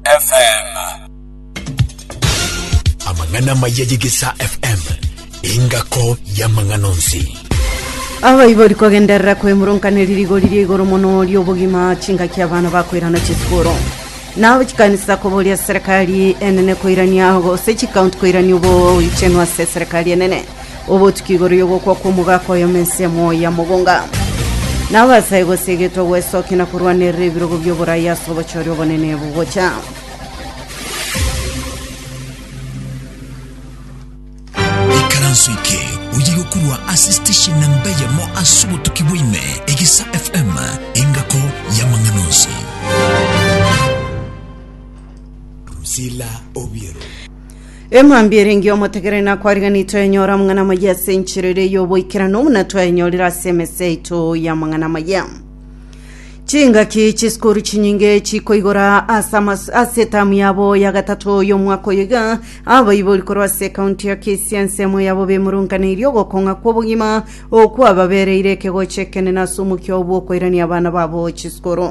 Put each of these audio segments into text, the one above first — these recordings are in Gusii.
FM. Amang'ana amaya y'Egesaa FM, engako y'amang'ana onsi. abaibori kogenderera kwemurunkaneri rigori ria igoro mono riobogima chingaki abana bakoirana chisukuru nabo chikanisa koboria serikali enene koirania gose chikaunti koirania oboichenu ase serikali enene obotuki igoro y'ogokwa kw'omogaka oyemo ensemo ya mogonga na abasae gose egetwa gwesokia na korwanerera ebirogo by'oboraya ase obochori obonene bogocha ikaranso eke oye gokurwa ase station namba yamo ase obotuki bwaime egisa fm engako y'amang'ana onsi Priscilla Obiero. Emambia erenge omotegereri nakwariganitwe enyora amang'ana amaya ase enchera ere y'oboikeranu buna twayenyorire ase emese yaito y'amang'ana amaya. Chingaki chisukuru chinyinge chikoigora ase amas- ase etamu yabo ya gatato y'omwaka oyo iga abaibori korwa ase ekaunti ya Kisii ensemo yabo bemurunkaneirie ogokong'a kw'obogima okwababereire ekegocho ekenene ase omokia oo bw'okoirania abana babo chisukuru.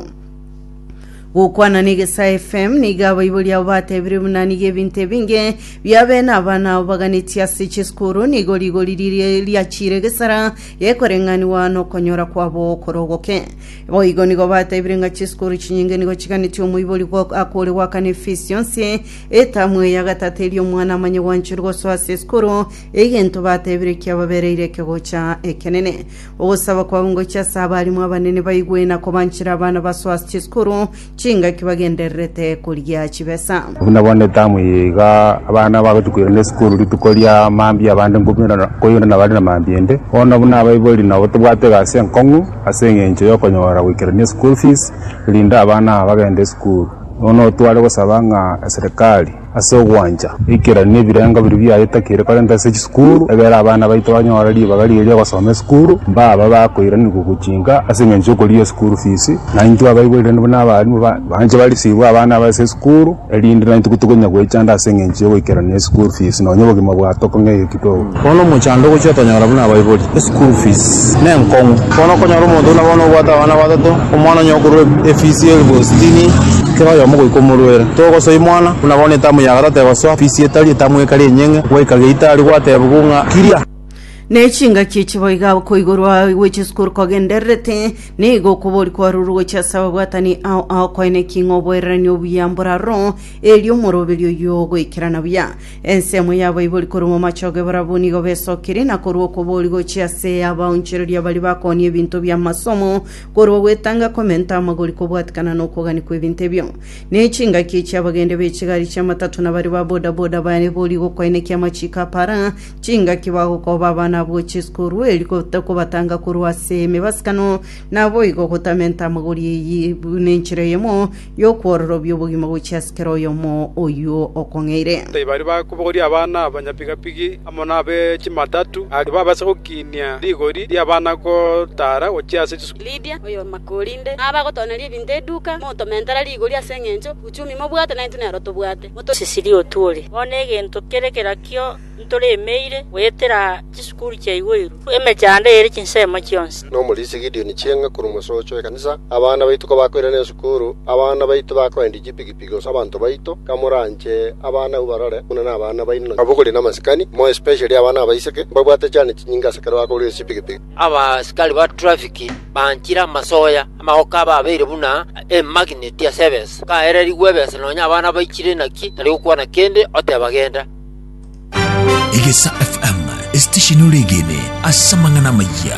Gokwana n'Egesaa FM nigo abaibori abo batebire buna nigo ebinto ebinge bia bene abana abo baganetie ase chisukuru nigo rigori riria riachire egesara gekoreng'aniwa nokonyora kwabo okore ogoke. Boigo nigo batebire ng'a chisukuru chinyinge nigo chiganetie omoibori gwa- akore goakana efisi yonsi etamu eye ya gatato erio omwana amanye gwanchorwa gosoa ase esukuru, egento batebire kiababereire ekegocha ekenene. Ogosaba kwabo ngochie ase abarimu abanene baigwe na kobanchera abana basoa ase chisukuru chingaki bagendererete koria chibesa. Buna bono etamu eye iga abana bagochia koirana esukuru rituko ria mambia abande nkoirana koirana bare na mambia ende. Bono buna abaibori nabo tobwate egasi enkong'u ase eng'encho y'okonyora goikerania eschool fees erinde abana aba bagende esukuru. Bono tware gosaba ng'a eserekari Ase ogwancha ekerari na ebirengo biria biaye takeire korenta ase chisukuru, egere abana baito banyore ribaga riria ria gosoma esukuru, mbaba bakoiranigwa gochinka ase engencho y'okorigia esukuru fees, na intwe abaibori rende buna abarimu banche barisibwe abana abo ase esukuru, erinde naintwe tokonya goechanda ase engencho y'ogoikerania esukuru fees, nonya obogima bwa tokong'eria. Bono omochando ogochia otonyora buna abaibori, eschool fees nenkong'u. Bono okonyora omonto buna bono obwate abana batato, omwana onye okorwa efees ya elfu sitini, kera oyomo goika omorwera, togosoa imwana buna bono etamu ya gatato egosoa, fees etari, etamu ekari enyeng'e, gwaika geita aria gwatebigwa ng'a kiria. Ne chingaki echi boiga okoigorwa gwe chisukuru kogendererete, nigo okobori kwarurwe gochia ase ababwatani ao ao koene ki ng'a oboereranie obuya mboraro, erio omoroberio oyio ogoikerana buya. Ensemo y'abaibori korwa momachogo ebarabwo nigo besokirie, na korwa okobori gochia ase abaonchoreria baria bakoonia ebinto bi'amasomo, korwa gwetanga komenta amagori kobwatikana nokogania kw'ebinto ebio. Ne chingaki chi'abagende b'echigari chi'amatato na baria ba bodaboda baibori gokoenekia amachiko apara, chingaki bagokooba abana abwo chisukuru erio gota kobatanga korwa ase emebasikano, naboigo gotamenta amagori eyio buna enchera eyemo, Y'okwororobia obogima gochia ase kera oyomo oyio okong'eire. Tibari bakobogoria abana abanyapigapigi amo nabe chimatatu, aria babase gokiinia rigori ri'abana gotaara gochia ase chisukuru. Lydia, oyomakorinde na abagotooneria ebinto eduka, motomentera rigori ase eng'encho uchumi mobwate naintwe nero tobwate. Cecilia Otuori, Bono egento kere kerakio. ntoremeire goetera chisukuru chia igoirwe emechando ere chinsemo chionsi. Nomorisia Gideoni chieng'a korwa omosocho w'ekanisa, abana baito kabakoirana esukuru, abana baito bakoendia chipigipigi gose abanto baito, kamoranche abana abwo barore buna nabana baino. Abwo kore namasikani, more especially abana abaiseke, mbabwate chane chinyinge ase ekero bakoruga chipigipigi. Abasikari ba trafiki banchire amasoya, amagoko abo abeire buna emagineti ase ebesa, kaererigwe ebesa nonya abana baichire naki tari gokwana kende, oteba genda. Egesa FM, esitesheni ore egene ase amang'ana amayia.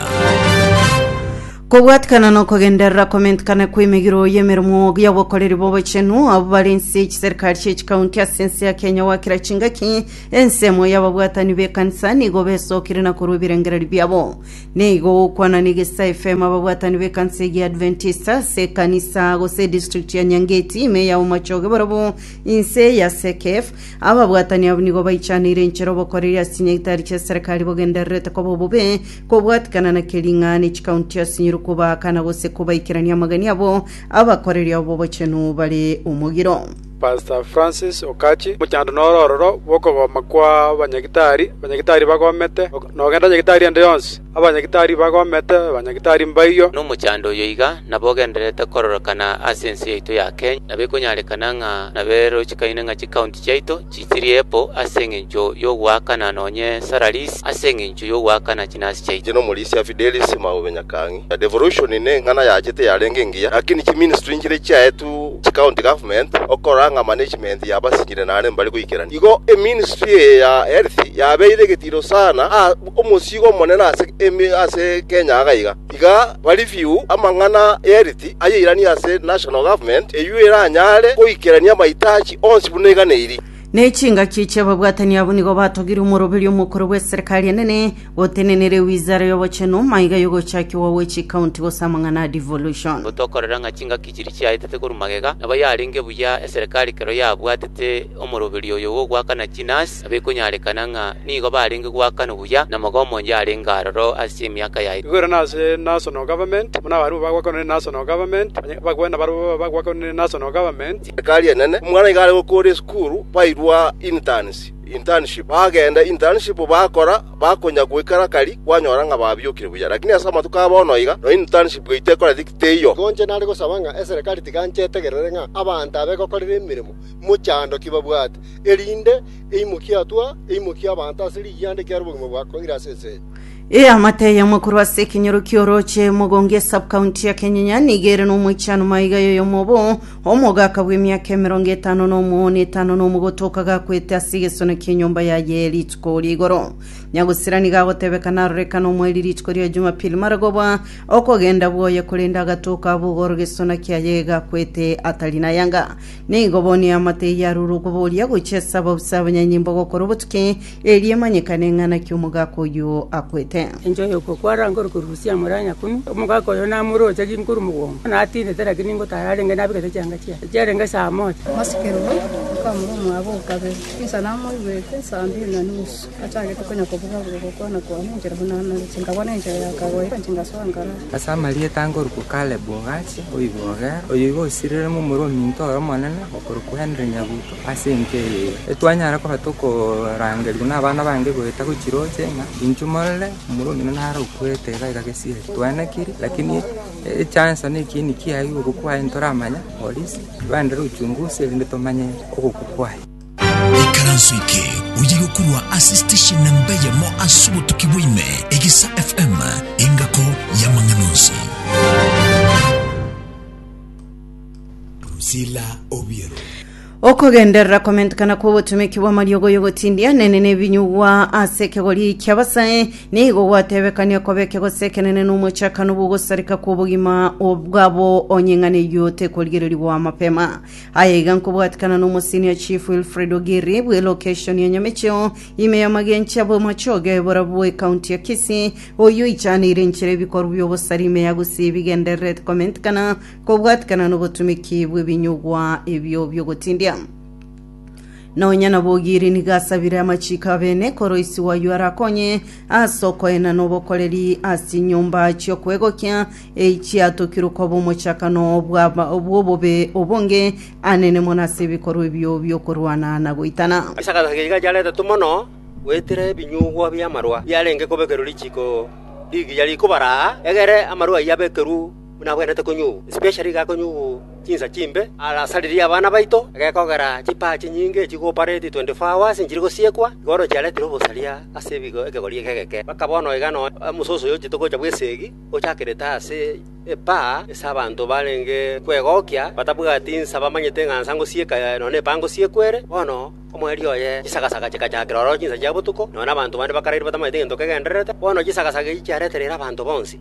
kobwatikana na okogenderera komentikana kw'emegiro y'emeremo y'obokoreri bw'obochenu abo bari ense chiserikali chi'echikaunti ase ense ya kenya gwakira chingaki ensemo y'ababwatani b'ekanisa nigo besokire na korwa ebirengereri biabo nigo gokwana na egesa fm ababwatani b'ekanisa egi adventista ase ekanisa gose edistrict ya nyangeti ime ya omochoge borobwo inse ya sekef Ababwatani abwo nigo baichaneire enchera obokoreri ase chinyaitari chi'eserekari bogendererete koba obobe, kobwatikana na kering'ana ne chikaunti ase nyiri kobaakana gose kobaikerania amagani abo abakoreri abo b'obochenu bare omogiro. Pastor Francis Okachi, Mochando noro ororo bw'okogoma kwa abanyagitari, abanyagitari bagomete, nogenda nyagitari ende yonsi. Abanyagitari bagomete, abanyagitari mbayio. Nomochando oyo iga nabogendererete kororokana ase ense yaito ya Kenya, na bikonyarekana ng'a naberochikaine ng'a chikaunti chiaito chichirie epo ase engencho yogoakana nonye salaries ase engencho yogoakana chinasi chiaito. Inche nomorisia Fidelis Maube Nyakang'e. Devolution neng'ana yachete yarenge engiya, lakini chiministry nchiria chiaetwe chikaunti government okorora ng'a management yabasinyire naende mbare goikerania. Igo eministry eye ya health yabeire egetiro sana. Omosiiga omonene ase ime ase Kenya aga iga, Tiga ba review amang'ana y'Elit ayairanie ase National Government, eyio eranyare goikerania amaitachi onsi buna iga na iri. Ne chingaki chi'ababwatani abo nigo batogire omoroberi omokoro bw'eserikari enene gotenenera ewizara y'obochenu, maiga y'ogochakigwa gwe chikaunti gose amang'ana a devolution. Gotokorera ng'a chingaki chiria chiaetete korwa magega, nabo yarenge buya eserikari kero yabwatete omoroberi oyo bw'ogoakana chinasi. na bikonyarekana ng'a nigo barenge goakana obuya namagoma onde arenge aroro ase emiaka yaito. Igwere nase National Government, buna abarabwo bagwakanwa ne National Government, onye bagwe nabarabwo babo bagwakanwa ne National Government. Ekari enene, omwana iga are gokora esukuru, bairwa interns, internship, bagenda internship bakora, bakonya goikera kari, kwanyora ng'a babiokire buya. Lakini ase amatuko a bono iga, nonya internship yaito ekoreti teiyo. Igo inche nare gosaba ng'a eserekari tiga nchetegerere ng'a abanto aba egokorera emeremo mochando ki babwate, erinde eimokie atwa, eimokie abanto ase rigianda ekiagera obogima bwa koire ase ense eye. Eamate eyemo korwa ase ekenyoro ki'orooche mogongo e Sub-county ya Kenyenya nigo ere nomoichano maiga y'oyomo obo omogaka bw'emiaka emerongo etano na omo na etano na omogoto okaga-kwete ase egesona ki'enyomba yaye rituko ri'igoro. Nyagusira nigo agotebeka naroreka nomoeri rituko ria Jumapili maragoba okogenda bwoye korende agatoka abogora gesona kiaye gakwete atari nayanga. Nigo bonye amatei arure okoboria gochia ase abausa abanyanyimbo gokora obotuki, erio emanyekane ng'a naki omogaka oyio akwete. Enchwa y'okwo kwarange ore korusia amore a Nyakumi, omogaka oyo namoroche ginkoru mogongo, natindete, lakini ngotara arenge nabegete chianga chiaye chiarenge saa mocha. Masikerwa, okamura omwabo o kabere, insa namoigwete saa mbiri na nusu. Nachagete konya kobuga buga gokwana kwane enchera buna Anani, chingabwana enchera ya kagoira, chingasoa nkaraa. Ase amarieta angorokwa Kaleb ogacha, oigogera, oyo igo osireremo omorwa ominto oye omonene, okorokwa Henry Nyabuto, ase enka eye iga etwanyara koba tokorangerigwa nabana bange goeta gochia roche, ng'a inchuo morore omorwa omino naro okwete iga iga gesieri. Twanekiri, lakini echansa na ekieni kiaye gokwa kwaye ntoramanya, polisi, ibande re uchunguzi erinde tomanye ogokwa kwaye. Ikaranso eke oye gokorwa ase station namba eyemo ase obotuki bwaime, Egisa FM, engako y'amang'ana onsi. Drusilla Obiero. okogenderera komentekana kw'ogotumeki bw'amariogo y'ogotindia nene nebinyugwa ase ekegori ki'abasae nigo gwatebekania koba ekegosi ekenene na omochakano bw'ogosareka kw'obogima bwabo onye ing'ana eyio tekorigereria goa mapema Aye iga nkobwatikana nomosenior Chief Wilfred Ogiri bwe location ya Nyamecheo, ime y'amagencho abo machoge aebora bwe county ya Kisii, oyio oichaneire enchera ebikorwa bi'obosare ime ya gusii bigendererete komentikana kobwatikana nobotumiki bw'ebinyugwa ebio biogotindia. Nonya nabo Ogiri nigo asabire amachiko abene koroisiwa oyio arakonye ase okoenana obokoreri ase chinyomba chi'okwegokia echiatokirwe koba omochakano bw'obobe obonge anene mono ase ebikorwa ebio bi'okorwana na goitana. Ase agasacha keria gachare atato mono, goetera ebinyugwa bi'amarwa biarenge kobekerwa richiiko rigiya rikobara aa, egere amarwa ayio abekerwe buna abwenerete konyugwa. Especially iga akonyugwa chinsa chimbe, arasaririe abana baito, egekogera chipaa chinyinge echi gooperatie 24 hours nchiri gosiekwa, igoro chiaretire obosaria ase ebigo ekegori eke egeke, mpaka bono iga nonya omososo oyochete gocha bw'eseegi. Ochakerete ase epaa, ase abanto barenge kwegokia, batabwati insa bamanyete ng'a nsa ngosieka nonya epaa ngosiekwa ere. Bono omoerio oye chisagasaga chikachakera ororo chinsa chia botuko, nonya nabanto bande bakaraire batamanyeti egento kegendererete, bono chisagasaga echi chiaretereire abanto bonsi.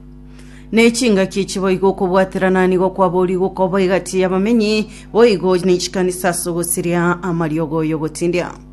Ne chingaki echi boigo okobwaterana nigo kwaboorire gokoba egati y'abamenyi boigo ne chikanisa ase ogosiria amariogo y'ogotindia.